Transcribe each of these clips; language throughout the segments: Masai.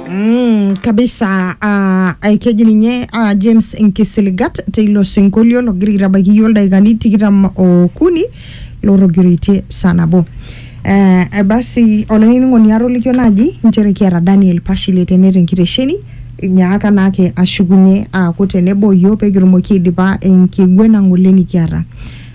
Mm, kabisa uh, aikeji ninye uh, James Nkisiligat teilo sinkolio logira aitabaiki iyiook ildaikani tikitam okuni lotogiraitie saa nabo. Eh, eh, basi olainining'oni atolikio naaji nchere kiata Daniel Pashile tene tenkitesheni inyaaka naake ashukunye aaku tenebo iyiook pee kitumoki aidipa enkiguena ng'ole nikiata.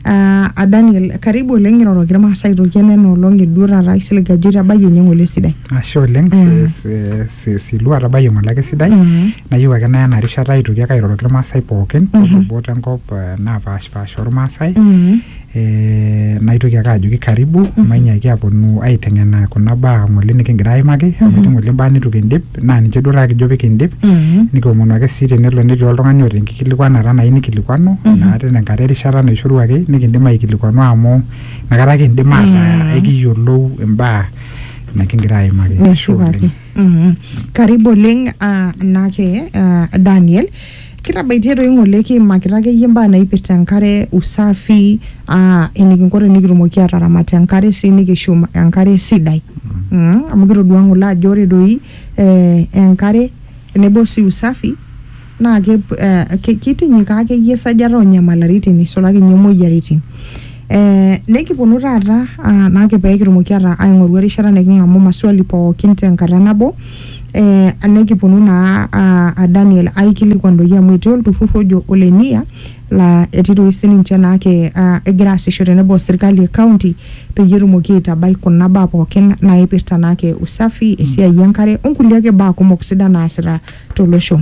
Ah, ah, Daniel, karibu oleng iroroki irmaasai aitoki ena enoolong eduo taata aisilig ajo itabayie ninye ng'ole esidai. ashe oleng Mm. si- si- si- silua atabayie ng'ole ake sidai Mm. nayieu ake naya ena rishata aitoki ake airoroki irmaasai pookin toolubot enkop eh, naapashipasha ormaasai Mm. eh, naitoki ake ajoki karibu mainyaaki aponu aiteng'ena kuna baa ng'ole nikingira aimaki amu etii ng'ole imbaa nitu kindip naa ninche duo taa kijo pikindip nikiomonu ake sii tenelo netii oltung'ani oota enkikilikuanata nayieu nikilikuanu naa tena enkata erishata naishoruaki nikindim aikilikuanu amu inakata kindim ataa ekiyiolou imbaa nikingira aimaki Ashe Neshipaki. oleng. Mhm. Karibu oleng ah, naake ah, Daniel. Kitabaitie toi ng'ole kiimakita akeyie imbaa naipirta enkare, usafi, aa enikinko tenikitumoki aataramat enkare sii nikishum enkare sidai. Mm, amu kitodua ng'ole ajo ore doi eh enkare tenebo sii usafi naa ke eh kitinyikaa akeyie esajata oo nyamalaritin eisulaki ninye moyiaritin. Eh nekiponu taata naa ake peekitumoki aing'oru erishata niking'amu maswali pookin tenkata nabo eh, anekiponu naa ah, a Daniel aikilikuan doi amu etii olturrur ojo ole NIA laa etii doi sininche naake ah, egira aasisho tenebo o sirkali e county peyie etumoki aitabai kuna baa pookin naipirta naake usafi esiai enkare onkulie ake baa kumok sidan naasita tolosho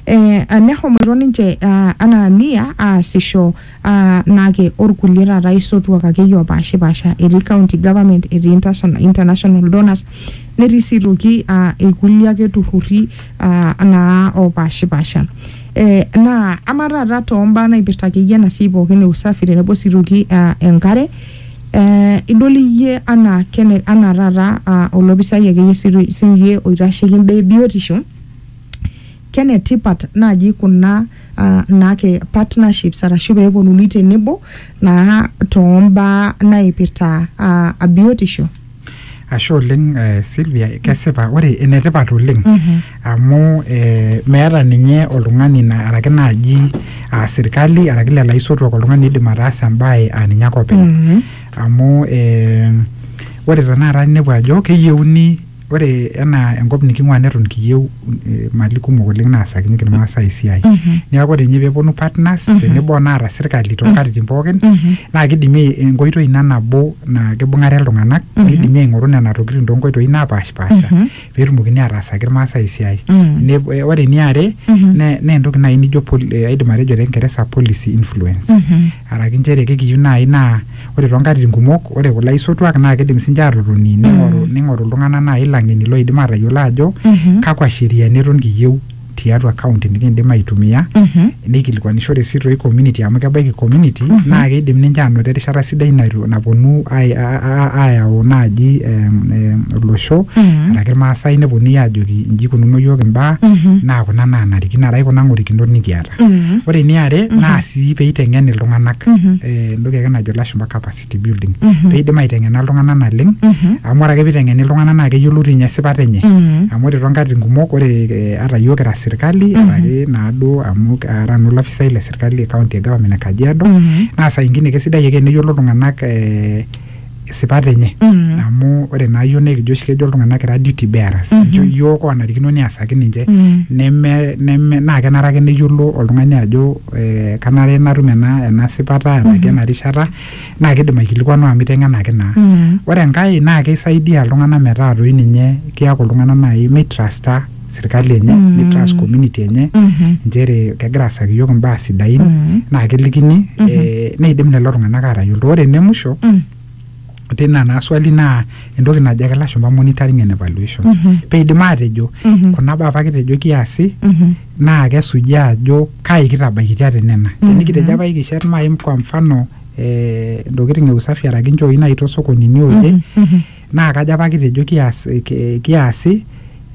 eh, nehomoito ninche ah, anaa NIA aasisho aa naake orkulie taata aisotuak akeyie opaashipaasha etii county government etii interna- international donors netii sii aitoki aa irkulie ake turrurri aa naa opaashipaasha eh, naa ama taata tombaa naipirta akeyie ena siai pookin e usafi tenebo sii aitoki aa enkare eh, idol iyie anaa kene anaa taata aa olopisai akeyie sii- siiyie oitasheki imbaa e biotisho Kenetipat naaji kuna uh, naake partnerships arashu pee eponunui tenebo naa toombaa naipirta uh, biotisho. Ashe oleng eh, Sylvia, kesipa ore enetipat oleng mm -hmm. amu eh, meeta ninye oltung'ani na, araki naaji uh, sirkali araki lelo aisotuak oltung'ani oidim ataasa embae uh, ninye ake openy mm -hmm. amu eh, ore tenakata inepu ajo keyieuni ore enaa enkop niking'ua neton kiyieu eh, mali kumok oleng naasakinyeki irmaasai esiai neeku ore ninye peeponu partners tenebo onaata sirkali toonkatitin pookin naa kidimi enkoitoi ina nabo naa kibung'are iltung'anak nidimi aing'oru nena tokitin toonkoitoi napaashipasha peetumokini ataasaki irmaasai esiai Ne- eh, ore eniare ne- naa entoki naaji nijo pol- eh, aidim atejo te kingeresa policy influence araki nchere kekiyieu naaji naa ore toonkatitin kumok ore kulo aisotuak naa kidim sinche atotoni ning'oru ning'oru iltung'anak naaji ilang'eni loidim atayiolo ajo Mhm. kakwa sheriani eton kiyieu tiatua county nikiindim aitumia Mhm. neikilikuanishore sii toi community amu kebaiki community naa keidim ninche aanoto erishata sidai naitu- naponu ai- a- a- a- aayau naaji em, em, olosho Mhm. araki irmaasai neponunui aajoki inji ikununo iyiook imbaa Mhm. naa kuna naanarikino araki kuna ng'orikinot nikiata Mhm. ore eniare naa sii peiteng'en iltung'anak Mhm. eh, entoki ake najo ilashumba capacity building Mhm. peidim aiteng'ena iltung'anak naleng Mhm. amu ore ake peiteng'eni iltung'anak naa keyiolou tinye esipata enye Mhm. amu ore toonkatitin kumok ore eh, ata yiok kira sirkali Mhm. araki naaduo amu ara nanu olafisai le sirkali e county e government e kajiado Mhm. naa saa ingine kesidai ake teneyiolo iltung'anak eh, isipat enye Mm. amu ore naa yiok naa ekijo oshi kejo iltung'anak kira duty bearers Mhm. Ejo yiok onarikino niasaki ninche Mm. neme neme naa kenare ake neyiolo oltung'ani ajo eh, kanare natum ena ena sipata enaki Mhm. ena rishata naa kidim aikilikuanu amu iteng'enaki naa Mm. ore enkae naa keisaidia iltung'anak metaa toi ninye kiaku iltung'anak naaji meitrasta sirkali enye mm. ni trust community enye mm -hmm. nchere kegira asaki yiok imbaa sidain mm -hmm. naa kelikini mm -hmm. eh, neidim lelo tung'anak aatayiolto ore ene musho mm -hmm tina naa swali naa entoki najo ake lashumba monitoring and evaluation mm -hmm. peidim aatejo mm -hmm. kuna baa apa kitejo kiasi mm -hmm. naa kesuji ajo kai kitabaikitia te nena mm -hmm. tenikitejo apa ikishet maim kwa mfano eh, ntokitin e usafi araki nchooi naai tosokonini oje mm -hmm. naa kajo apa kitejo kias ki- kiasi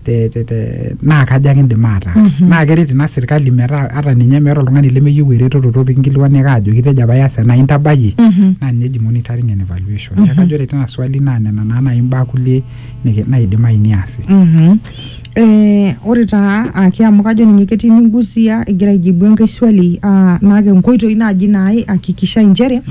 te, te, te, naa kaja kindim ataas naa keret ina sirkali metaa ata ninye meeta oltung'ani lemeyieu eretoto topi kinkilikuaniaka ajo kitejo apa ias ena intabayie naa ninye eji monitoring and evaluation neeku kajo ore tina swali naa nena naa nai imbaa kulie niki- naidimayu niasi Mhm. Eh, ore taa ake amu kajo ninye ketii ningusia egira aijibu enkae swali ah, naake nkoitoi naaji naihakikisha inchere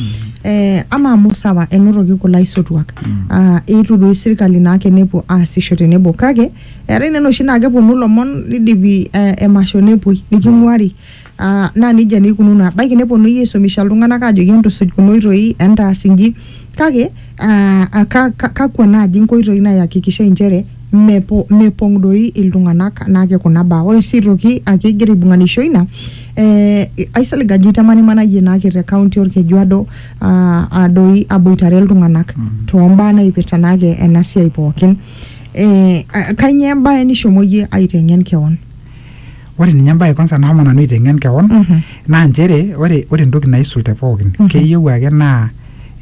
eh, ama amu sawa enotoki kulo aisotuak ah, eetuo doi sirkali naake nepuo aasisho tenebo kake eetae nena oshi naa keponu ilomon nidipi eh, emasho nepuoi niking'uari Aa naa nejia naa eikununo, ebaiki neponunui aisumisha iltung'anak aajoki entusuj kuna oitoi, entaas inji kake aa ka- ka- kakwa naaji inkoitoi naayakikishai inchere mepo- mepong' doi iltung'anak naake kuna baa. Ore sii aitoki ake igira aibung'anisho ina ee aisilig ajo itamanimanayie naake te kaunti olkeju odo aa aa doi aboitare iltung'anak too mbaa naipirta naake ena siai pookin. Ee kainyoo embae nishomo iyie aiteng'en keon? ore ninye embae kwanza nashomo nanu aiteng'en kewon Mhm. naa nchere ore ore entoki naisul te pookin Mhm. keyieu ake naa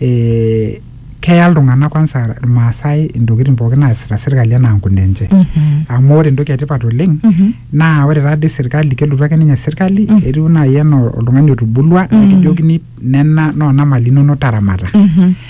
eh, keya iltung'anak kwanza irmaasai intokitin pookin naasita sirkali enaa nkuna enche Mhm. amu ore entoki etipat oleng Mhm. naa ore taadii sirkali kelotu ake ninye sirkali Mm. etiu naaji enaa oltung'ani otubulua Mm. nikijokini nena noona mali inonok taramata Mhm.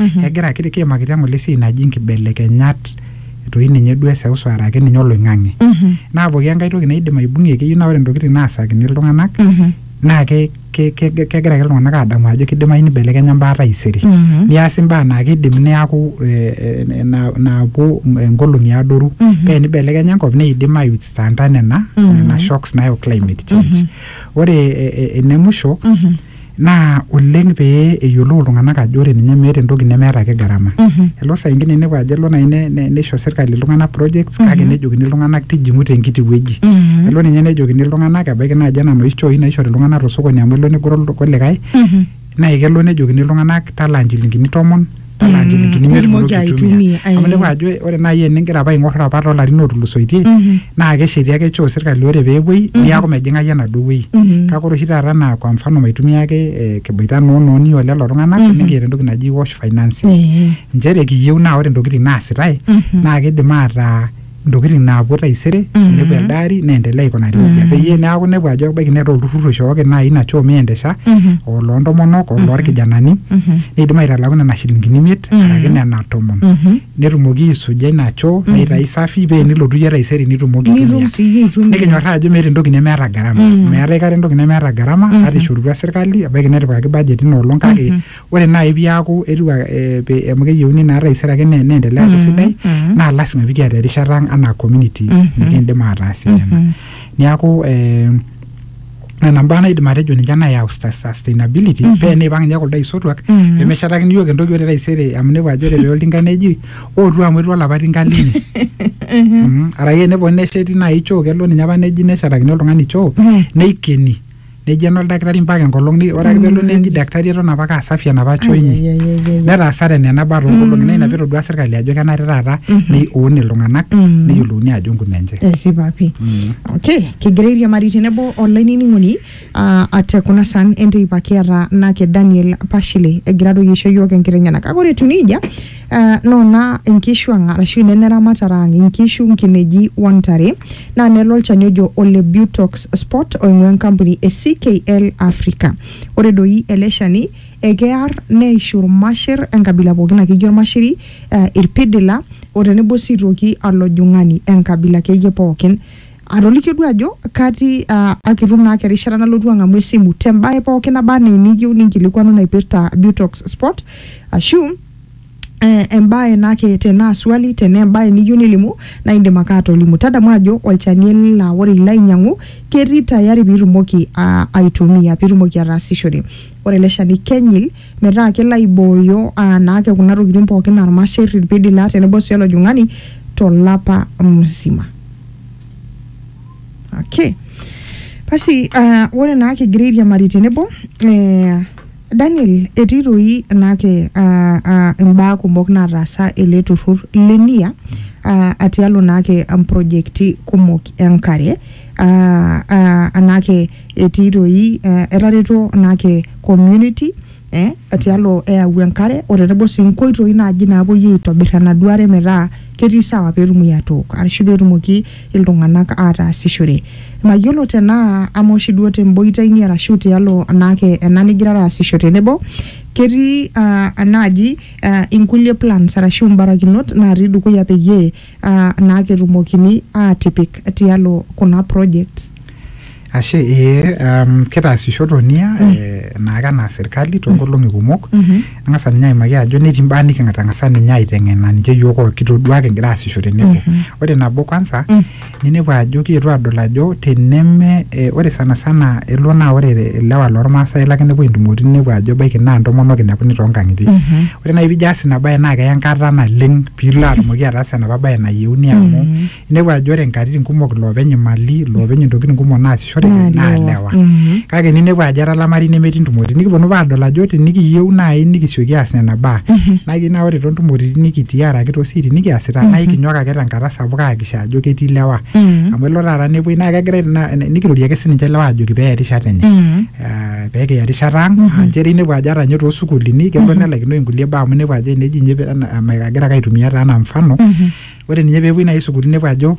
Mhm. egira ki- kiimakita ng'ole esiai naji nkibelekenyat toi ninye duo eseuseu araki ninye oloing'ang'e Mhm. naa pooki enkae toki naidim aibung'ie keyieu naa ore ntokitin naasakini iltung'anak Mhm. naa ke- ke- ke- kegira ake iltung'anak aadamu ajo kidimayu nibelekenya mbaa taisere Mhm. niasi mbaa naa kidim neaku eh, eh, na- naapuo nkolong'i adoru Mhm. pee nibelekenya enkop neidim aiwithstanda nena Mhm. nena shocks nayau climate change ore eh, eh, ene musho Mhm. naa oleng pee eyiolou iltung'anak ajo ore ninye meeta entoki nemeeta ake gharama mm -hmm. elo saa ingine inepu ajo elo nai neisho sirkali iltung'anak projects mm -hmm. kake mhm. nejokini iltung'anak tijing'u tenkiti wueji mm -hmm. elo ninye nejokini iltung'anak ebaiki naaji ena noshi chooi naishori iltung'anak tosokoni amu elo negoro kulikae mm -hmm. naa kelo nejokini iltung'anak talaa inchilingini tomon tanaa nchilingini imiet itumoki itumoki aitumia aitumia, amu eh. inepu ajo ore naaji eningira apa aing'or apa toolarin otulusoitie Mhm. naa kesheti ake choo sirkali ore peepuoi niaku mejing'ai enaduo wueji Mhm. kake ore oshi taata naa kwa mfano maitumia ake eh, kiboita noo nooni o lelo tung'anak Mhm. nikiata entoki naji wash financing Eh, nchere kiyieu naa ore intokitin naasitae mhm. naa kidim ataa ntokitin naapuo taisere Mhm. nepuo elde ari neendelea aikunari nejia Mhm. peyie neeku inepu ajo ebaiki neeta olturrur oishooki naaji ina choo miendesha Mhm. oloo ntomonok oloo irkijanani Mhm. neidim aitalaku nena shilingini imiet Mhm. araki nena tomon Mhm. netumoki aisuja ina choo neitayu safi pee enilotu iyie taisere nitumoki nitum aitumia siyie aitumia nikinyorraa ajo meeta entoki nemeeta gharama Mm. meeta aikata entoki nemeeta gharama Mhm. ata ishorutua sirkali ebaiki netipikaki budget ina olong kake Mhm. ore naaji piaku etiu a- eh, pe- amu keyieuni naa taisere ake ne- neendelea aaku sidai mhm. naa lasima pikiata erishata ang anaa community Mhm. nikiindim aataasie nena Mhm. niaku eh, nena mbaa naidim atejo ninche nayau sta- sustainability Mhm. pee eneipang ninye kuldo aisotuak Mhm. pemeshetakini yiok entoki ore taisere amu inepu ajo ore pee oltinka neji ootu amu etu olapa tinka linyi Mhm. arake eneponu nesheti naaji choo kelo ninye apa neji neshetakini oltung'ani choo Mhm. neikeni nejo ena oldakitari mpaka enkolong ni- ore ake pelo neji daktari eton apake asafi enapa choo inyi netaasate nena baa toonkolong'i naa ina pitodua sirkali ajo kenare taata neun iltung'anak neyiolouni ajo nkunenche esipa pii okay kigira airiamari tenebo olainining'oni ah, ate kuna san enteipa kiata nake daniel pashile egira doi aisho yiok enkiteng'ena kake ore etiu nejia Uh, noona inkishu ang arashu inene ramatare ang inkishu nkineji wontare naa nelo olchani ojo ole butox spot oing'ua enkampuni e ckl africa ore doi ele shani ekear neishu irmashir enkabila pookin akeyie ormashiri uh, irpidila o tenebo sii toki alojung'ani enkabila akeyie pookin atolikio duo ajo katii uh, akitum naake erishata nalotu ang'amu esimu tembae pookin naba anaa eniyieu ninkilikuanu naipirta butox spot ashu eh, embae nake tenaa swali tenaa embae niyieu nilimu naa indim ake atolimu tadamu ajo olchani ele laa ore ilo ainyiang'u ketii tayari piitumoki ah, aitumia piitumoki ataasishore ore ele shani kenyil metaa kelo aibooyo ah, naake kuna tokitin pookin aa irmasher irpidila tenebo sii olojung'ani tolapa mzima okay basi uh, ore naa kigira airiamari tenebo eh, Daniel, etii doi naake imbaa kumok naataasa ele turrur le NIA atialo naake mprojekti kumok enkare anaake etii doi etareto naake community eh atialo eyau enkare o tenebo sii nkoitoi naaji naapuoi aitobirr enaduo are metaa ketii sawa peetumoki atook arashu peetumoki iltung'anak aataasishore. Mayiolo tenaa ama oshi duo temboita inyi arashu tialo anaake ena nigirara aasisho tenebo, ketii uh, enaaji uh, inkulie plans arashu imbarakinot naatii dukuya peyie uh, naake etumokini aatipik tialo kuna projects. Ashe ee um, kitaasisho tonia mm. eh, naake anaa serkali toonkolong'i kumok Mhm. ang'asa ninye aimaki ajo netii imbaa niking'atang'asa ninye aiteng'ena ninche yiok oo kitodua kigira aasisho tenebo ore nabo kwanza Mm. ninepu ajo kietuo adol ajo teneme eh, ore sana sana elo naa ore ilewa lormaasai lake nepuo intumoritin ninepu ajo ebaiki naa intomonok inepuni toonkang'itie Mhm. ore naaji pijo aas ina baye naa keya enkata naleng piilo atumoki ataasa enapa baye nayieuni amu inepu ajo ore nkatitin kumok iloopeny imali iloopeny intokitin kumok naasishoreki Naa naa lewa. lewa Mhm. kake ninepu ajo era lamari nemetii ntumoritin nikiponu apa aadol ajo tinikiyieu naaji nikisioki aas nena baa naa keyieu naa ore toontumoritin nikitii araki toosiaitin nikiasita naa ikinyok ake tenkata sapuk aakikisha ajo ketii lewa Mhm. amu elo taata nepuoi naa kegirai na- nikirorie ake sininche lewa ajoki peeya erishata enye Mhm. Ah, peekiya erishata ang ah, nchere inepu ajo ata ninye toosukuulini kelo nelaikinoi inkulie baa amu inepu ajo eneji inye pe- ana- ama- agira ake aitumia taa anaa mfano ore ninye peepuoi naaji sukuul inepu ajo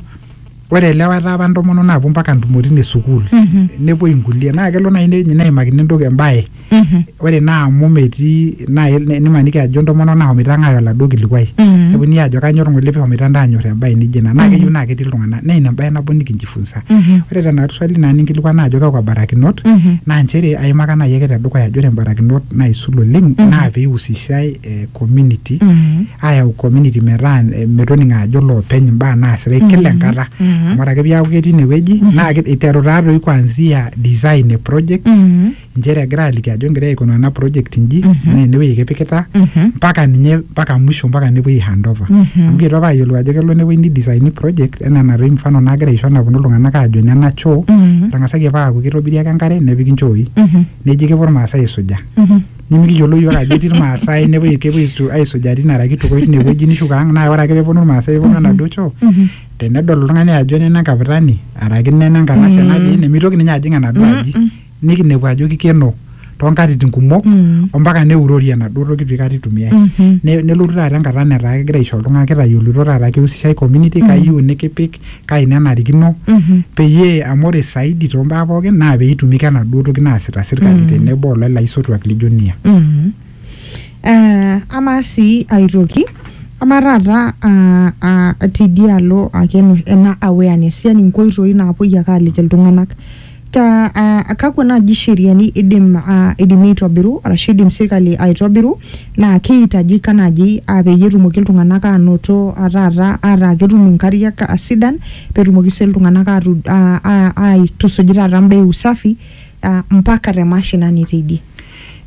ore ilewa etaa apa intomonok naapuo mpaka ntumoritin e sukuul Mhm. nepuoi inkulie naa kelo naaji ne- neimakini entoki embaye Mhm. ore naa amu metii naaji ne- nimaniki ajo intomonok nahomoita ang'aaya oladuo kilikuai Mhm. neponunui aajo kanyor ng'ole pihomoita ntae anyor embaye nijo ina naa keyieu naa ketii iltung'anak naa ina embaye nabo nikinjifunsa Mhm. ore tena swali naa ninkilikuana ajo kakwa barakinot Mhm. naa nchere aimaka naaji ake tedukuya ajo ore imbarakinot naisul oleng Mhm. naa peihusishae eh, community mm -hmm. ayau community metaa eh, metoning ajo loopeny imbaa naasitai mm -hmm. kila enkata mm -hmm. amu ore ake piaku ketii inewueji mm -hmm. naa iteru taatoi kuanzia design e project mm -hmm. inchere egira aliki ajo ngira aikuna ena project inji mm -hmm. naa enewueji kipikita mpaka mm -hmm. ninye mpaka mwisho mpaka nepuoi handover mm -hmm. amu kitu apa ayiolou ajo kelo newueji ni design project enaa enatoi mfano naagira aisho naponu iltung'anak aajo nena choo mm -hmm. etang'asaki apa aaku kitobiri ake enkare nepiki nchooi mm -hmm. neji kepuo irmaasai aisuja mm -hmm. nimikiyiolo yiok ajo etii irmaasai nepuoi kepuoi aisu- aisujaa tine araki itukoi tine wueji nishuko ang naa ore ake peponu irmaasai peponu enaduo choo tenedol oltung'ani ajo nena enkaputani araki nena enkanashe natii ene mitoki ninye ajing enaduo aji nikinepu ajo kikeno tonkatitin kumok ompaka neurori enaduo toki pikata itumiae Ne- nelotu taata enkata netaa kegira aisho iltung'anak kitayioloito taata kihusishae community kayieu nikipik kai nenarikino mm-hmm. peyie amu ore saidi too mbaa pookin naa pee itumika enaduo toki naasita sirkali mm-hmm. tenebo olelo aisotuak lijo nia. Mm-hmm. Eh, amaa sii aitoki amaa taata ah, ah, tidialo ake ena awareness yani nkoitoi naapuoi ake aaliki iltung'anak Ka, uh, kakwa naaji sheriani idim uh, idimi aitobiru arashu idim sirkali aitobiru naa keihitajika naaji uh, peyie etumoki iltung'anak aanoto uh, taata ataa ketum inkariak uh, sidan petumoki sii iltung'anak atu, uh, a- aitusuj taata mbaa e usafi uh, mpaka te mashinani teidie.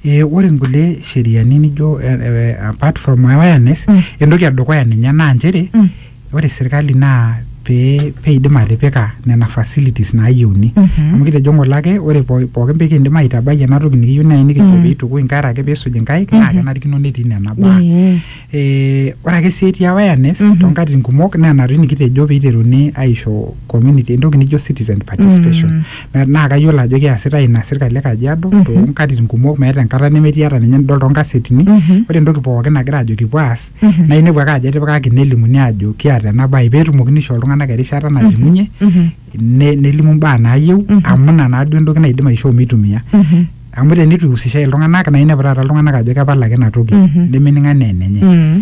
e, ore nkulie sheriani nijo eh, eh, apart from awareness Mm. entoki edukuya ninye naa nchere Mm. ore sirkali naa pee peidim atipika nena facilities naayieuni Mhm. amu kitejo ng'ole ake ore po- pookin pikindim aitabai ena toki nikiyieu naaji nikijo Mm. piitukui inkera ake piisuj inkaik naa Mhm. kenarikino netii nena baa Ee. Eh, ore ake sii etii awareness Mhm. toonkatitin kumok naa ena toi nikitejo piiteruni aisho community entoki nijo citizen participation Mm. Me- naa kayiolo ajo keasitae ina sirkali e kajiado Mhm. toonkatitin kumok meeta enkata nemetii ata ninye nidol toonkasetini Mhm. ore entoki pookin nagira ajo kipuo aas Mhm. naa inepu ake ajo etipikaki nelimuni ajo kiata ena bae peetumokini aishoo iltung'anak erishata najing'unye Mhm. ne- nelimu mbaa naayieu Mhm. amu ina naaduo entoki naidim aishoo mitumia Mhm. amu tenitu ihusishae iltung'anak naa inepu taata iltung'anak ajo kepal ake ina toki Mhm. nemening anaa enenye Mhm.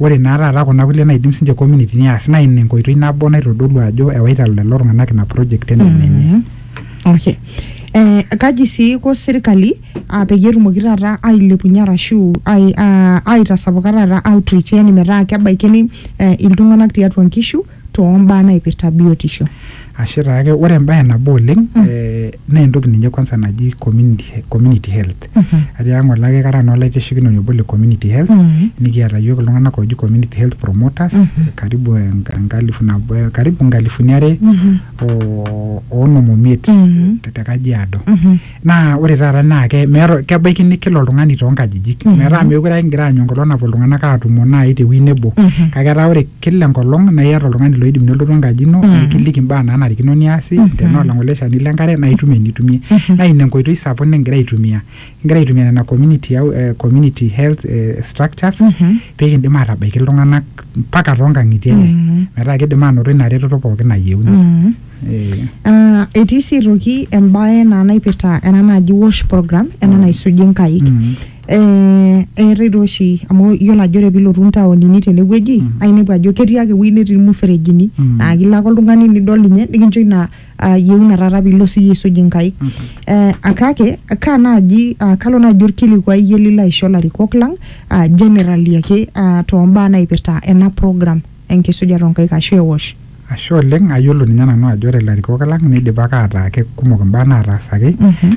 Ore naa taata kuna kulie naidim sinche community ni aas naa ina enkoitoi nabo naitodolu ajo ewaita lelo tung'anak ina project enaa enenye. Mm. Okay. Eh, kaji sii iko sirkali ah, peyie etumoki taata ailepunye arashu ai, ah, aitasapuka taata outreach yani metaa kebaikini eh, iltung'anak tiatua nkishu too mbaa naipirta biotisho. Ashe taake, ore embae nabo oleng mm. eh, naa entoki ninye kwanza naji community, community health mm -hmm. atiaka ng'ole ake kara naa olaitashekinoni obo le community health mm -hmm. nikiata yiok iltung'anak ooji community health promoters mm -hmm. karibu enkalifu nabo eh, karibu nkalifuni are mm -hmm. o onom omiet mm -hmm. te Kajiado mm -hmm. naa ore taata naa ke- meeta kebaiki nikila oltung'ani toonkajijik metaa meekure ake ingira aanyu enkolong napuo iltung'anak aatumo naaji tewuei nebo kake etaa ore kila enkolong naa iyata oltung'ani loidim nelotu enkaji ino nikiliki imbaa naanarikino niasi tenaa olang'ole shani lenkare naa itum enitumie naa ina enkoitoi sapuk nikingira aitumia kingira aitumia nena community, au- eh, community health eh, structures pee kindim aatabaiki iltung'anak mpaka toonkang'itie enye metaa kidim aanoto ina retoto pookin nayieuni Eh, Ah, etii sii aitoki embae naa naipirta ena naji wash program ena naisuji nkaik Mm. eh, eetae taa oshi amu iyiolo ajo ore piilotu ntaonini tenewueji Mm. naa inepu ajo ketii ake ewueji netii ilmuferejini Mm. naa kilo ake oltung'ani nidol ninye nikincho ina ah, yieuna taata piilo siyie aisuj inkaik Mhm. eh, akake kaa naaji ah, kalo naaji orkilikuai iyie lilo aisho ilarikok lang ah, generally ake ah, tombaa naipirta ena program enkisujata oo nkaik aashu eosh. Ashe oleng, ayiolo ninye nanu ajo ore ilarikok lang neidipaka ataa kekumok imbaa naataasaki amu